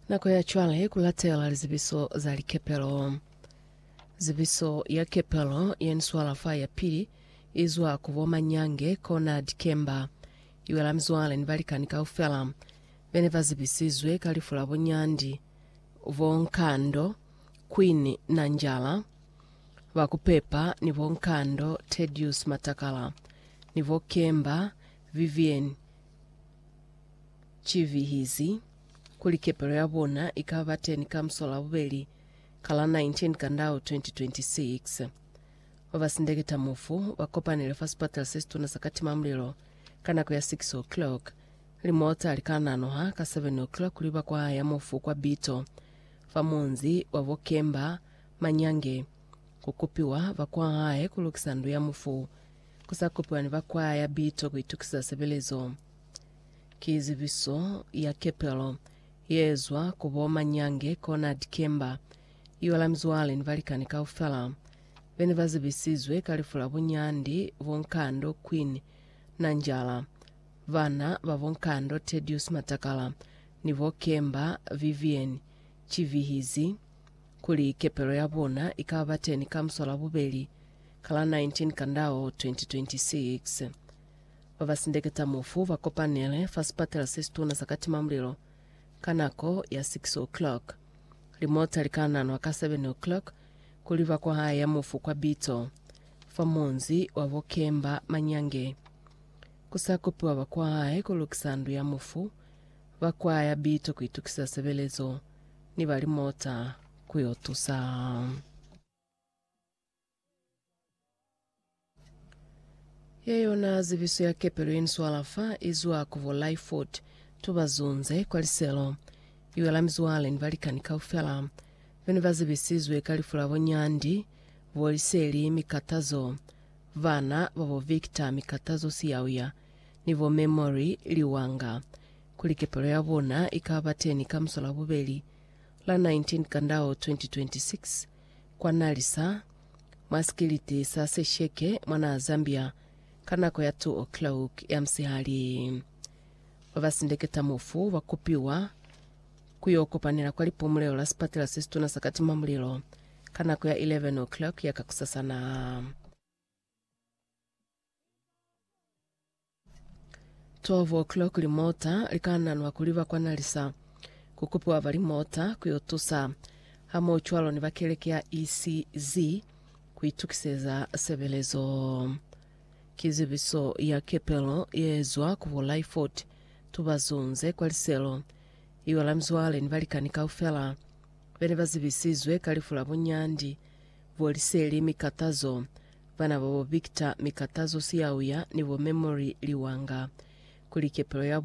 Nako ya cwale ku latela lizebiso za likepelo. Zebiso ya kepelo ye ni swala fa ya pili i zwa ku bo manyange kona dikemba. I wela mizwale ni balikani kaufela be ne ba zebisizwe ka lifu la bo Nyandi, bo Nkando, Queen Nanjala, ba ku pepa ni bo Nkando Tedious Matakala ni bo Kemba Vivienne Ki vihizi kuli kepelo ya bona i ka ba teni ka musolabubeli ka la 19 Kandau 2026. Ba ba sindeketa mufu ba kopanile fa sipatala se situna sa Katimamulilo ka nako ya 6:00. Limota li ka nanoha ka 7:00 kuli ba kwahaya mufu kwa Bito fa munzi wa bo Kemba Manyange, ku kupiwa ba kwahaye ku lukisa ndu ya mufu. Ku sa kopiwa ni ba kwaya Bito ku itukisa sebelezo ki zibiso ya kepelo ye ezwa ku bo Manyange kona Dikemba. Iwa la mizwale ni balikani kaufela be ne ba zibisizwe ka lifu la bunyandi bo Nkando Queen Nanjala, bana ba bo Nkando Tedious Matakala ni bo Kemba Vivian Chivihizi kuli kepelo ya bona i ka ba teni ka Musolabubeli ka la 19 Kandao 2026. Ba ba sindeketa mufu ba kopanele fa sipatela se situna sa Katimamulilo ka nako ya 6 o'clock. Limota li ka nanwa ka 7 o'clock ku liba ku haya mufu kwa Bitso, fa munzi wa bo Kemba Manyange. Ku sa kopiwa ba kwa hae ku lukisa ndu ya mufu, ba kwaya Bitso ku itukiseza sebelezo. ni ba limota ku yo tusa. Ye yona zibiso ya kepelo ye ni swala fa i zwa ku bo Lyford. Tu ba zunze kwa liselo. I wela mizwale ni balikani kaufela be ne ba zibisizwe ka lifu la bo Nyandi, bo Liseli, mikatazo, bana ba bo Victor, mikatazo Siyauya, ni bo Memory, liwanga. kuli kepelo ya bona i ka ba teni ka muso la bubeli, la 19 Kandao 2026, kwa Nalisa, mwa sikiliti sa Sesheke, mwa naha Zambia, ka nako ya 2:00 ya musihali. Ba ba sindeketa mufu ba kupiwa ku yo kopanela kwa lipumulelo la sipatela se situna sa katimamulilo ka nako ya 11:00 ya kakusasana. 12 o'clock limota likananwa kuliba kwa nalisa kukupiwa ba limota kuyo tusa hamoocwalo ni ba keleke ya ECZ kuitukiseza sebelezo. Kizibiso ya kepelo yeezwa ku bo Lyford tubazunze kwa liselo iyo la mizwale ni balikani kaufela bene bazibisizwe ka lifu la bunyandi bo liseli mi katazo Bana babo Victor, Mikatazo Siyauya ni bo Memory Liwanga kuli kepelo ya